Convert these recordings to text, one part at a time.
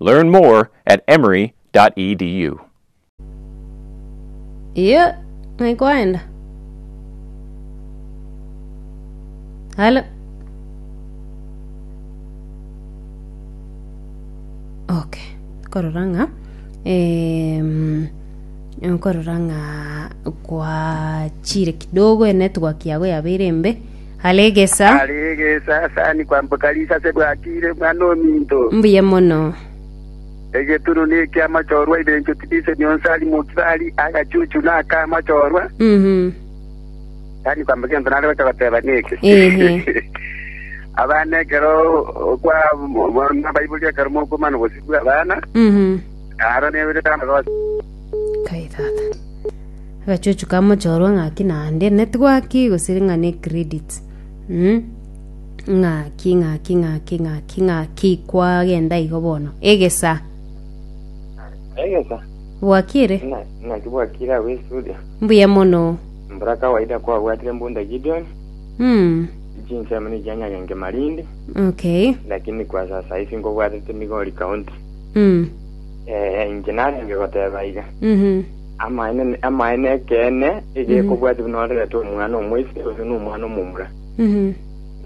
Learn more at emory.edu. Iyo ng'ai kwaenda. Halo. Okay. Korora ng'a em, nkorora ng'a kwachire kidogo enet work yago yabeire embe Are egesa. Are egesa, sani kwamboka risa ase bwakire, Omwana ominto. Mbuya mono. Egeturu na eki'amachorwa ebencho tibisemi onsi ari mokibari, agachuchu na ak'amachorwa. Mhm. Sani kwamboka egento nare gocha goteba neke. Ehe. Abana ekero okwa abaibori ekero mokomana obosio bw'abana, Mhm. aro neberete amagoso. Kai tata. Agachuchu ka mochorwa ng'aki naende network gose ng'a ne credit. Mm. Ng'aki ng'aki ng'aki ng'aki ng'aki kwagenda igo bono. Egesa. Egesa. Bwakire. Na- Naki bwakira ago estudio. Mbuya mono. Mbura kawaida kwabwatire mbunda Gideon. Mm. Chinsemo ni chianyagenge Malindi. Okay. Lakini kwa sasa hivi ngobwatete Migori County. Mm. Eh, inche narenge goteba aiga. Mhm. Amaene amaene ekeene egekobwati buna orerete omwana omoise oyo na omwana omomura. Mhm.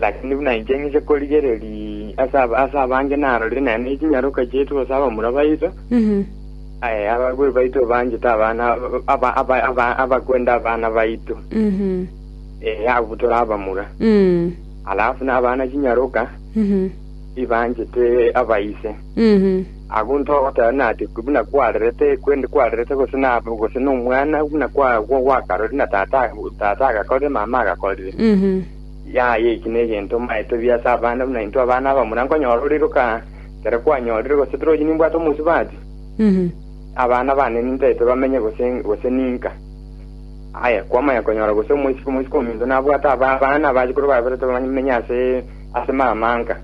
Lakini buna inche ng'ise korigereri ase aba- ase abange narorire naye ne chinyaroka chiaito ase abamura baito, Mhm. eh, abakwe baito banchete abana aba- aba- aba- abakwenda abana baito. Mhm. Eh, abu tore abamura. Mm. Alafu na abana chinyaroka Mhm. ibanchete abaise. Agwo intwe ogoteba ng'a ati buna kwarerete, kwen- kwarerete gose na gose na omwana buna kwa- gwa- gwakarore na tata tata agakorire mama agakorire. Yaya eki negento maete buya ase abana buna intwe abana abamura nkonyora oriroka ekero kwanyorire gose tore oyio nimbwate omosubati abana bane nintaete bamenye gose gose ninka. Aya kwamanya konyora gose omoiseke omoiseke ominto nabwate aba- abana abachikoro baberete bamenye ase ase mama nka.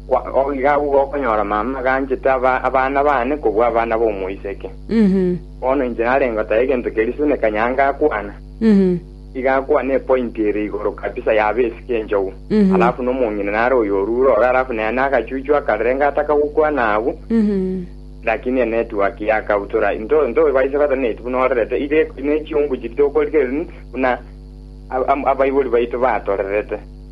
Kwa- Iga agwo gokonyora mama aganchete aba- abana bane kobua abana b'omoiseke. Mhm. Bono inche narenge goteba egento keria Sune Kanyanga akwana. Mhm. Iga akwana epointi ere igoro kabisa ya base k'enchogu. Mhm. Alafu nomong'ina nare oyo orure ororo alafu nere nagachuchu akarenge ataka gokwana abwo. Mhm. Lakini enetwork yakautora into into baise goteba neti buna orerete iga eko- nechiungu chiria tokorigereria buna ab- am- abaibori baito batorerete.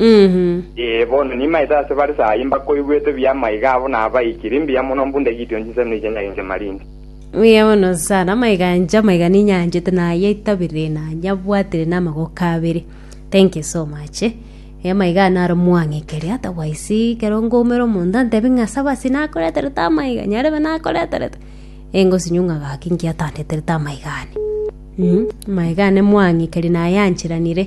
Ee, bono nimaete ase bare saa eye mbakoigwete buya amaiga abo nabaikire mbuya mono mbunde gitio chinsemo echi enyagenche marinde. Buya bono sana, amaiga anje, amaiga ninyanchete naye itabire nanyabwatire na amagoko abere. Thank you so much. Eh, amaiga aya naro mwang'ekeria, otherwise ekero ngoumera omonto antebi ng'a saba ase nakoreterete amaiga, nyarebe nakoreterete, eh, ngosinywa ng'a gaki inki atandeterete amaiga ane. Mh, amaiga ane mwang'ekeria naye anchiranire.